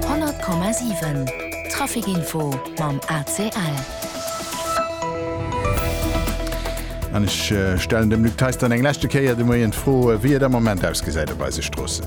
100,7 Trafic Info mam ACL. An ech stellen dem Luc Theis dann eng leschte Kéier de Moien d'Fro, wéi et am Moment ausgesäit op eise Stroossen.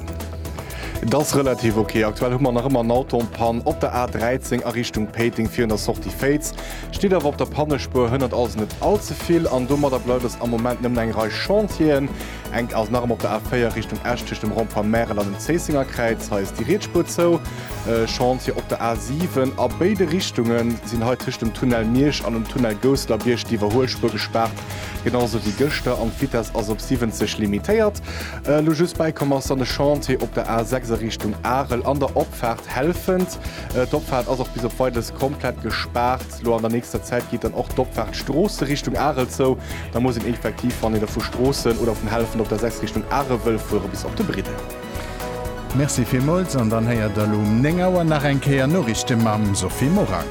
Et ass relativ ok. Aktuell hu mer nach ëmmer en Auto en panne op der A13 a Richtung Péiteng virun der Sortie Féiz. Steet awer op der Pannespuer. Hënnert ass et net all ze vill an domadder bleift et am Moment nëmmen eng Rei Chantieren. Enk ass nach ëmmer op der A4 Richtung Esch tëscht dem Rond-point Märel an dem Zéissingerkräiz. Hei ass déi Rietspur zou. E Chantier op der A7 a béide Richtunge sinn hei tëscht dem Tunnel Miersch an dem Tunnel Gousselerbierg d'Iwwerhuelspur gespaart, genau esou wéi gëschter. An d'Vitess ass op 70 limitéiert. Elo just bäikomm ass dann e Chantier op der A6 a Richtung Arel an der Opfaart Helfent. D'Opfaart ass och bis op Weideres komplett gespaart. Lo an der nächster Zäit geet dann och d'Opfahrt Stroosse Richtung Arel zou. Da muss een effektiv, wann een da vu Stroossen oder vun Hellefen op der 6 Richtung Arel wëll fueren, bis op de Briddel. Merci villmools an dann héiert der lo um 9 Auer nach eng Kéier Noriichten mam Sophie Morang.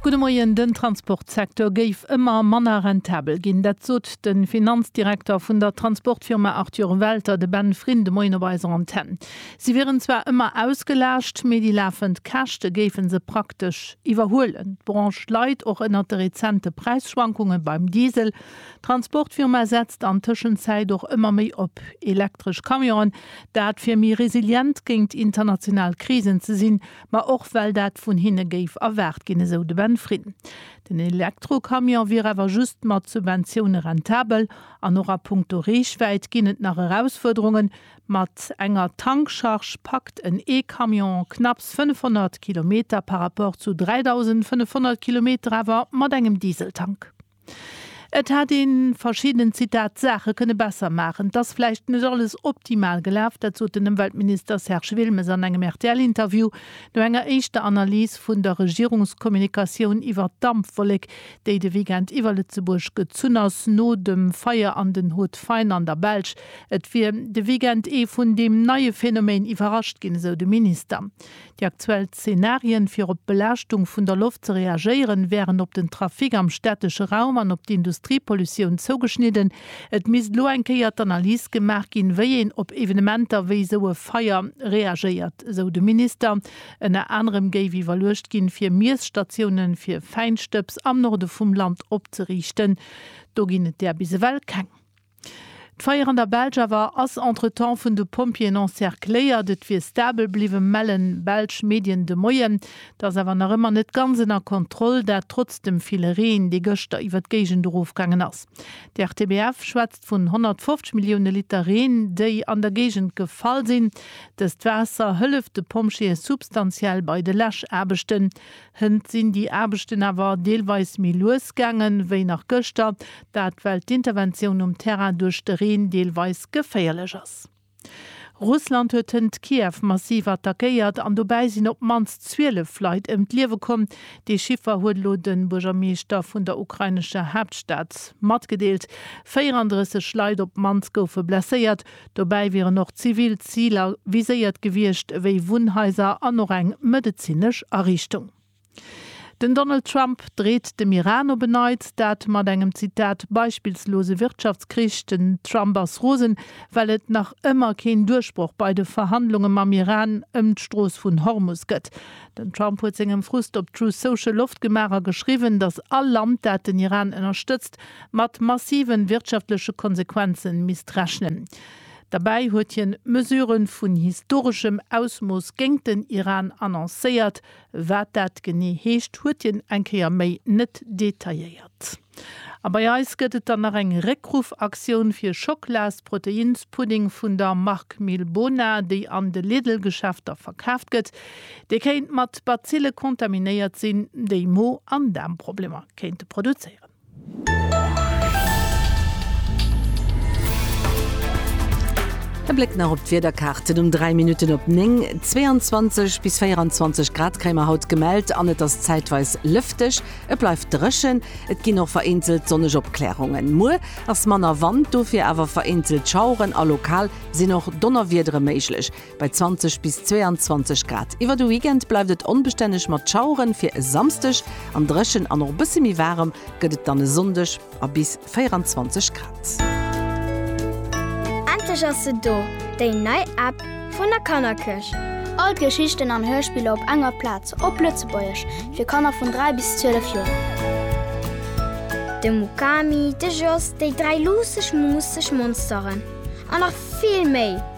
Gudde Moien, Den Transportsecteur géif ëmmer manner rentabel ginn. Dat sot de Finanzdirekter vun der Transportfirma Arthur Welter, de Ben Frin, de Moien op eiser Antenn. Si wieren zwar ëmmer ausgelaascht, mee déi lafend Käschte géife se praktesch iwwerhuelen. D'Branche leit och ënnert de rezente Präisschwankunge beim Diesel. D'Transportfirma setzt an Tëschenzäit och ëmmer méi op elektresch Camionen. Dat fir méi resilient géint international Krisen ze sinn, ma och well dat vun hinne géif erwaart ginn, esou de Ben Frin. Den Elektrocamion wier awer just mat Subventioune rentabel. An och a Punkto Reechwäit ginn et nach Erausfuerderungen, Mat enger Tankcharge packt en E-Camion knapps 500 Kilometer par rapport zu 3.500 Kilometer awer mat engem Dieseltank. Et hätt ee verschidden, Zitat, Saache kënne besser maachen. Et ass vläicht net alles optimal gelaf, dat sot den Ëmweltminister Serge Wilmes an engem RTL-Interview no enger éischter Analys vun der Regierungskommunikatioun iwwert d'Dampwollek, déi de Weekend iwwer Lëtzebuerg gezunn ass, no dem Feier an den Hauts-de-Faine an der Belsch. Et wier de Weekend ee vun deem neie Phänomen iwwerrascht ginn, esou de Minister. Déi aktuell Zenarien, fir op d'Belaaschtung vun der Loft ze reagéieren, wären op den Trafic am städtesche Raum an op d'Industriepollutioun zougeschnidden. Et misst elo eng Kéier d'Analys gemaach ginn, wéi een op Evenementer wéi esou e Feier reagéiert, esou de Minister. Ënner anerem géif iwwerluecht ginn, fir Miesstatioune fir Fäinstëbs am Norde vum Land opzeriichten. Do ginn et där bis ewell keng. D'Feier an der Belsch awer ass entretemps vun de Pompjeeën encercléiert. Et wier stabel bliwwen, mellen belsch Medien de Moien. Et ass awer nach ëmmer net ganz ënner Kontroll, dat trotz dem ville Reen, dee gëschter iwwer d'Géigend erofgaangen ass. D'RTBF schwätzt vun 150 Millioune Liter Reen, déi an der Géigend gefall sinn. Dëst Waasser hëlleft de Pompjeeë substantiell bei de Läschaarbechten. Hënt sinn déi Aarbechten awer deelweis méi lues gaangen, wéi nach gëschter, dat well d'Interventioun um Terrain duerch de Reen deelweis geféierlech ass. Russland huet hënt Kiew massiv attackéiert an dobäi sinn op d'mannst 12 Leit ëm d'Liewe komm. Dee Chiffer huet elo de Buergermeeschter vun der ukrainescher Haaptstad matgedeelt. 34 Leit op d'mannst goufe blesséiert, Dobäi wieren och zivil Ziler viséiert gewiescht, ewéi Wunnhaiser an och eng medezinesch Ariichtung. Den Donald Trump dreet dem Iran op en Neits, dat mat engem, Zitat, beispillslose Wirtschaftskrich. Den Trump ass rosen, well et nach ëmmer keen Duerchbroch bei de Verhandlunge mam Iran ëm d'Strooss vun Hormus gëtt. Den Trump huet sengem Frust op Truth Social Loft gemaach a geschriwwen, datt all Land, dat den Iran ënnerstëtzt, mat massiven wirtschaftleche Konsequenzen misst rechnen. Derbäi huet hien Mesuren vun historeschem Ausmooss géint den Iran annoncéiert. Wat dat genee heescht, huet hien eng Kéier méi net detailléiert. A bei eis gëtt et dann nach eng Réckruffaktioun fir Schocklaas-Proteinspudding vun der Mark Milbona, déi an de Lidl-Geschäfter verkaaft gëtt. Dee kéint mat Bazille kontaminéiert sinn, déi Mo an Daarmproblemer kéinte produzéieren. E Bléck nach op d'Wiederkaarten um 3 Minutten op 9, 22 bis 24 Grad kréie mer haut gemellt an et ass zäitweis lëfteg. Et bleift dréchen, et ginn och vereenzelt sonneg Opklärungen. Muer ass manner Wand, dofir awer vereenzelt Schaueren a lokal sinn och Donnerwiedere méiglech. Bei 20 bis 22 Grad. Iwwer de Weekend bleift et onbestänneg mat Schaueren, fir e Samsdeg an dréchen an och e bësse méi waarem gëtt et dann e Sonndeg a bis 24 Grad. Endlech ass se do, déi nei App vun der Kannerkëch! All d'Geschichten an Hörspiller op enger Plaz, op Lëtzebuergesch, fir Kanner vun 3 bis 12 Joer. De Mukami, de Jos, déi dräi luusseg, muusseg Monsteren an nach vill méi!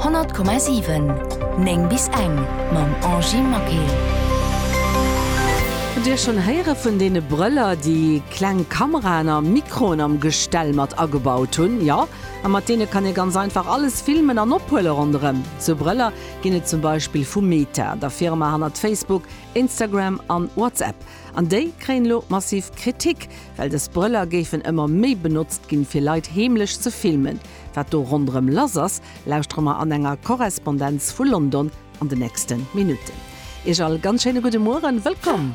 100,7 9 bis eng mam Angie Maquet. Hutt Dir schonn héiere vun deene Brëller, déi kleng Kameraen a Mikroen am Gestell mat agebaut hunn? Jo, a mat deene kann ee ganz einfach alles filmen an ophuele ronderëm. Sou Brëller ginn et zum Beispill vu Meta, der Firma hannert Facebook, Instagram an WhatsApp. An déi kréien elo massiv Kritik, well dës Brëller géifen ëmmer méi benotzt ginn, fir Leit heemlech ze filmen. Wat do ronderëm lass ass, lauschtere mer an enger Korrespondenz vu London an de nächste Minutten. Iech all ganz schéine gudde Mueren. Wëllkomm!